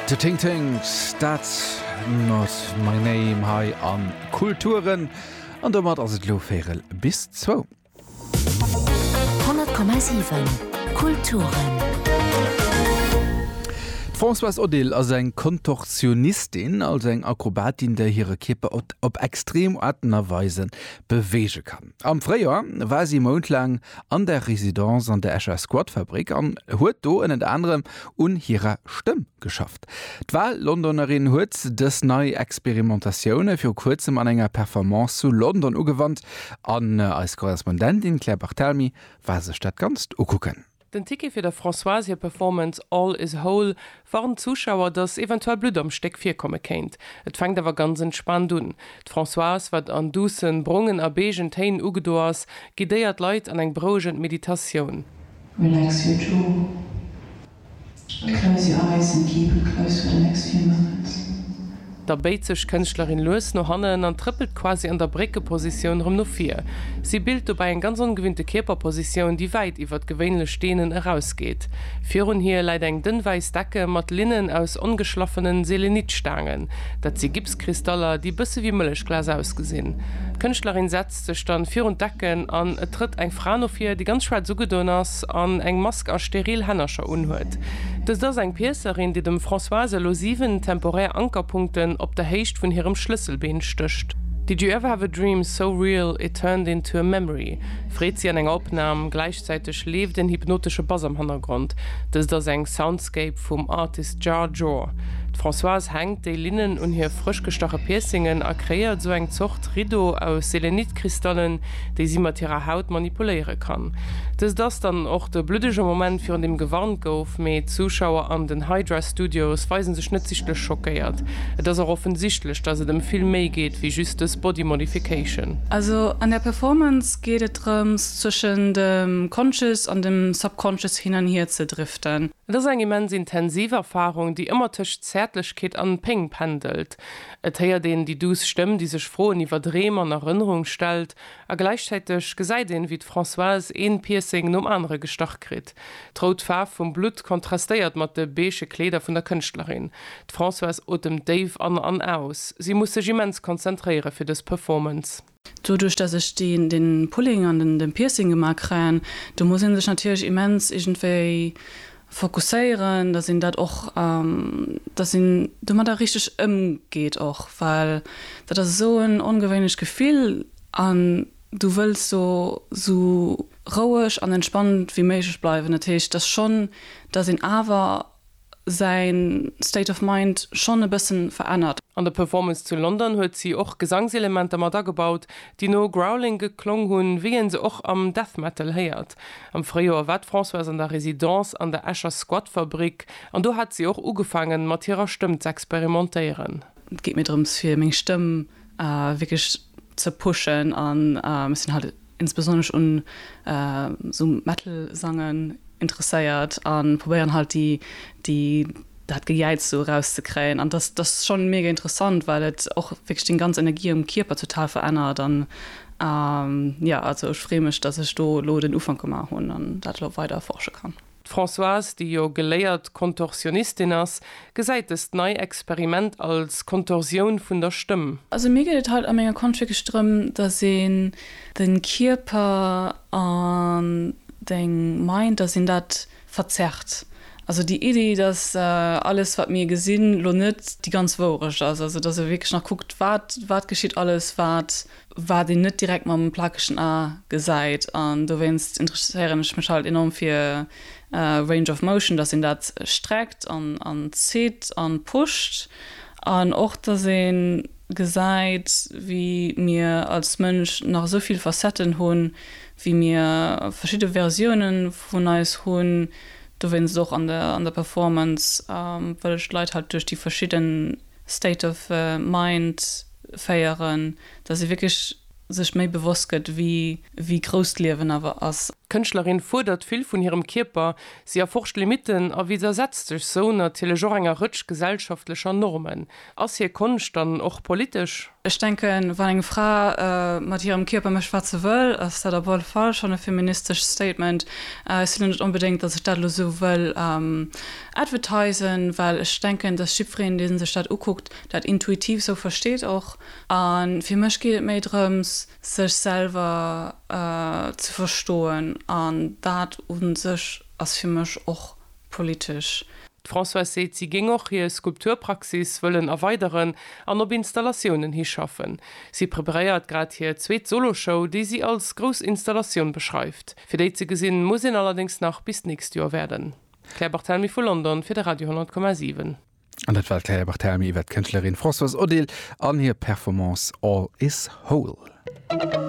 The Ting Tings, dat not my name hei am Kulturen. An domat ass et elo Véirel bis zwou. 100,7 Kulturen. D'Françoise Odile ass eng Kontorsionistin, also eng Akrobatin, déi hire Kierper op extrem Aarten a Weise beweege kann. Am Fréijoer war si e Mount laang an der Residence an der Escher Squatfabrik an huet do ënnert anerem un hirer Stëmm geschafft. D'Wal-Londonerin huet dës nei Experimentatioune viru kuerzem an enger Performance zu London ugewannt an eis Korrespondentin Claire Barthelmy war sech dat Ganzt ukucken. Den Ticket fir der Françoise hir Performance All is whole warnt d'Zuschauer, datt eventuell Blutt am Stéck virkomme kéint. Et fänkt awer ganz entspaant un. D'Françoise, wat an duussen, brongen a beigën Téin ugedo ass, guidéiert d'Leit an eng berouegend Meditatioun. Relax your jaw. Close your eyes and keep it close for the next few moments. Da béit sech d'Kënschtlerin lues no hannen an trëppelt quasi an der Bréckepositioun rëm no vir. Si bilt dobäi eng ganz ongewinnte Kierperpositioun, déi wäit iwwert gewéinlech Deenen erausgeet. Virun hir läit eng dënn wäiss Decke mat Linnen aus ongeschlaffenen Selenitstaangen. Dat si Gipskristaller, déi bësse wéi Mëllechglas ausgesinn. D'Kënschtlerin setzt. stellt sech dann virun d'Ecken an et trëtt eng Fra no vir, déi ganz schwaarz ugedoen ass an eng Mask a steril Hännercher unhuet. Dëst ass eng Piëcerin, déi dem Françoise elo 7 temporär Ankerpunkten op der Héicht vun hirem Schlësselbeen stécht. Did you ever have a dream so real it turned into a memory? freet si an enger Opnam. Gläichzäiteg leeft en hypnotesche Bass am Hannergrond. Dëst ass eng Soundscape. Konzept vum Artist Jar Jor. D'Françoise hänkt déi Linnen un hir frësch gestache Piercingen a kreéiert esou eng Zort Riddo aus Selenit-Kristallen, déi si mat hirer Haut manipuléiere kann. Dëst ass dann och de bluddege Moment virun deem gewarnt gouf, mee d'Zuschauer an den Hydra Studios weise sech net sichtlech schockéiert. Et ass och offensichtlech, dass et ëm vill méi geet wéi just dës Body Modification. Also an der Performance geet et drëms, zwëschen dem Conscious an dem Subconscious hin an hier ze driften. Et ass eng immens intensiv Erfarung, déi ëmmer tëscht Zäertlechkeet an Péng pendelt. Et héiert een déi duuss Stëmm, déi sech Froen iwwer Dreem an Erënnerung stellt, a gläichzäiteg gesäit een, wéi d'Françoise een Piercing nom anere gestach kritt. D'rout Faarf vum Blutt kontrastéiert mat de beige Kleeder vun der Kënschtlerin. D'Françoise otemt déif an an aus. Si muss sech immens konzentréiere fir dës Performance. Doduerch dass ech deen den Pulling an den den Piercing gemaa kréien, do muss een sech natierlech immens iergendwéi fokusséieren, dass een dat och, dass een domadder richteg ëmgeet och, well dat ass esou en ongewéinlecht Gefill an du wëlls do esou roueg an entspannt wéi méiglech bleiwen. Dat heescht, dass schonn, dass een awer. säin State of Mind schonn e bëssen verännert. An der Performance zu London huet si och Gesangselementer mat agebaut, déi no Growling geklong hunn, wéi een se och am Death Metal héiert. Am Fréijoer war d'Françoise an der Residence an der Escher Squatfabrik an do hat si och ugefaangen, mat hirer Stëmm z'experimentéieren. Et geet mir drëms, fir meng Stëmm wierklech ze pushen an ech sinn halt insbesonnesch un esou Metal Sangen interesséiert an probéieren halt déi déi dat Gejäiz sou eraus ze kréien an dass dass schon mega interessant well et och wierklech deng ganz Energie am Kierper total verännert an jo also ech free mech dass ech do elo den Ufank gemaach hunn an dat elo weider erforsche kann. D'Françoise, déi jo geléiert Kontorsionistin ass, gesäit dëst nei Experiment als Kontorsioun vun der Stëmm. Also mir geet et haut a menger Konscht wierklech drëm, datt een de Kierper an deng Mind, datt een dat verzerrt. Also déi Iddi, datt alles wat mir gesinn, lo net déi ganz Wourecht ass. Also datt e wierklech nach kuckt, wat wat geschitt alles, wat wat een net direkt mam plakegen A gesäit an dowéinst interesséieren ech mech halt enorm fir Range of Motion, dass een dat streckt an zitt an pusht an och dass een gesäit wéi mir als Mënsch nach esou vill Facetten hunn, wéi mir verschidde Versiounen vun eis hunn. Dowéinst och an der Performance wëll ech d'Leit halt duerch déi verschidden State of Mind. féieren, dass ee wierklech sech méi bewosst gëtt, wéi grouss d'Liewen awer ass. D'Kënschtlerin fuerdert vill vun hirem Kierper, si erforscht Limitten a widdersetzt sech sou natierlech och enger Rëtsch gesellschaftlecher Normen. Ass hir Konscht dann och politesch? Ech denken, wann eng Fra mat hirem Kierper mécht, wat se wëll, ass dat op alle Fall schonn e feministescht Statement. Ech sinn elo net onbedéngt, dass ech dat elo sou wëll advertisen, well ech denken, dass jiddwereen, dee sech dat ukuckt, dat intuitiv sou versteet och a fir mech geet et méi drëms sech selwer ze verstoen an dat un sech ass fir mech och politesch. D'Françoise seet si géing och hir Skulpturpraxis wëllen erweideren an op Installatiounen hi schaffen. Si preparéiert grad hir zweet Soloshow, déi si als grouss Installatioun beschreift. Fir déi ze gesinn, muss een allerdéngs nach bis d'nächst Joer waarden. D'Claire Barthelmy vu London fir de Radio 10,7. An dat war d'Claire Barthelemy iwwer d'Kënschtlerin Françoise Odile an hir Performance All is Whole.